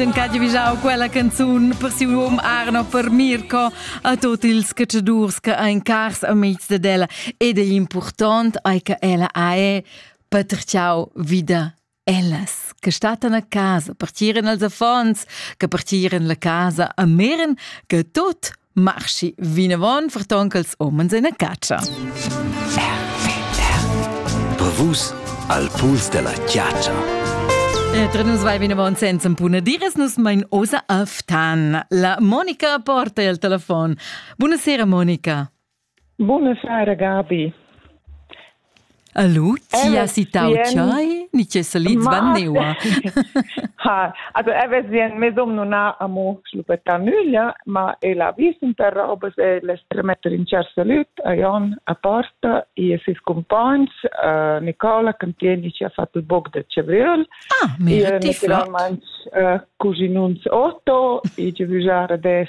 En ca giavgiau quella canzun per siu um Arno per Mirko a tot ils cacciadurs che ein cars amics de ella ed è important ai che ella ha è paterciau vida ellas che statan a casa partieren als affons che partieren la casa a meren che tot Marschi vinavon ferton ch'els omens en a catscha. Bravus al puls della chiaccia. E tra nus vai vinavon senza puna dires nus mein osa aftan. La Monica porta il telefon. Buonasera Monica. Buna sera, Gabi. Allo, ti has citau tschei ni che salits van neua? Ha, also er wir sien, mes dom non ha amo schlupeta nüglia, ma el ha vis un per robes e les tremetter in cer salut a Jon a porta e a ses compagns, uh, Nicola, che tieni ci ha fatto il bog del cebriol, ah, mira, e uh, naturalmente uh, cusinuns Otto, e ci vusare des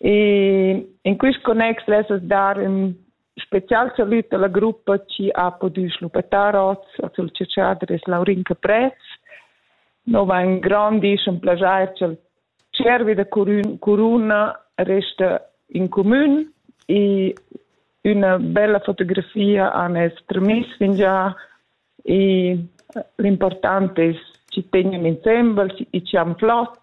E in quist connex lessas dar ün special salüt alla gruppa chi ha pudü schluppetar hoz a sul ciaciadres Laurin Caprez. No va ün grandisch ün plajair cha'l tschiervi da Coruna resta in comün e üna bella fotografia han es tramiss fingià e l'important es chi tegnan insembel e chi han flot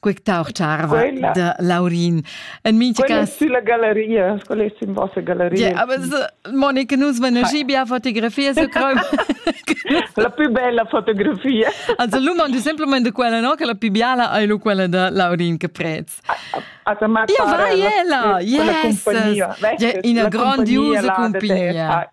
Quectar charva quella, da Laurin. En minti cas sulla galleria, quella è in vostra galleria. Yeah, aber so, Monica nus menagie bien fotografia su creu. la più bella fotografia. Also l'umand simplement de quella no che la più biala è lu quella da Laurin che prez. Also ma Io vai ella. Yes. Ja, ina grandiosa cumpagnia.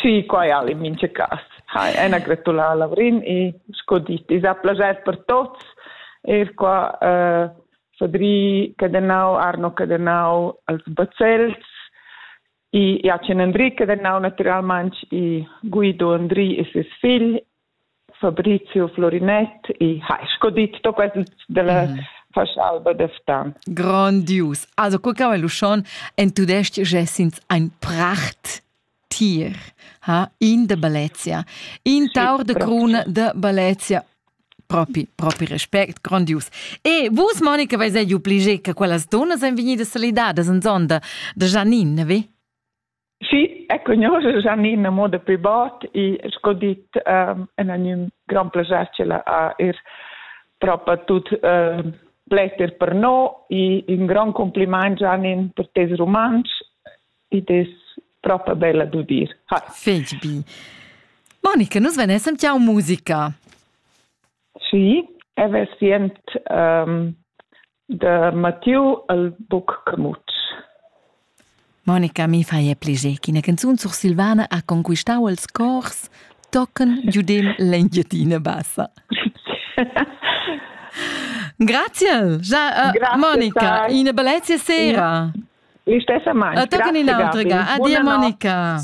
Sì, quai al in mincha cas. Ha, ena gratulà a Lavrin e sco dit, i s'ha plaschè per tots, eir qua eh, Fadri Cadenau, Arno Cadenau als Bazels, i Jachen Andri Cadenau naturalmaing e Guido Andri e ses figl Fabrizio Florinett e hai sco dit to quels della mm. fascialba de Ftan. Grandius. Also co cava l'uschon en tudestg gesins ein pracht tier ha in de Balezia, in taur de cruna de Balezia propi, propi respect, grandius. E vus, Monica, vais ei obligé che quellas donas ein vegnidas solidadas en zonda de Janine, vi? Sì, eg cugnuosch Gianina mo dapi bot e sco dit ehm en a gnü grand plascher che ella ha eir propa tut ehm l'ester per no e ün grand complimaint Gianin per tes rumantsch ed es propa bella d'udir. Ha. Fetg bi. Monica, nus venessen tiau musica. Sì, e ves sient ehm Da Mattiu al buc camut. Monica, mi fai pliger ch'ina canzun sursilvana ha conquistau els cors tochen giudem l'Engiadina Bassa. Grazie, ja, uh, Monica, una bellezia sera. L'istessa mano. Tocca un'altra. Addio Monica.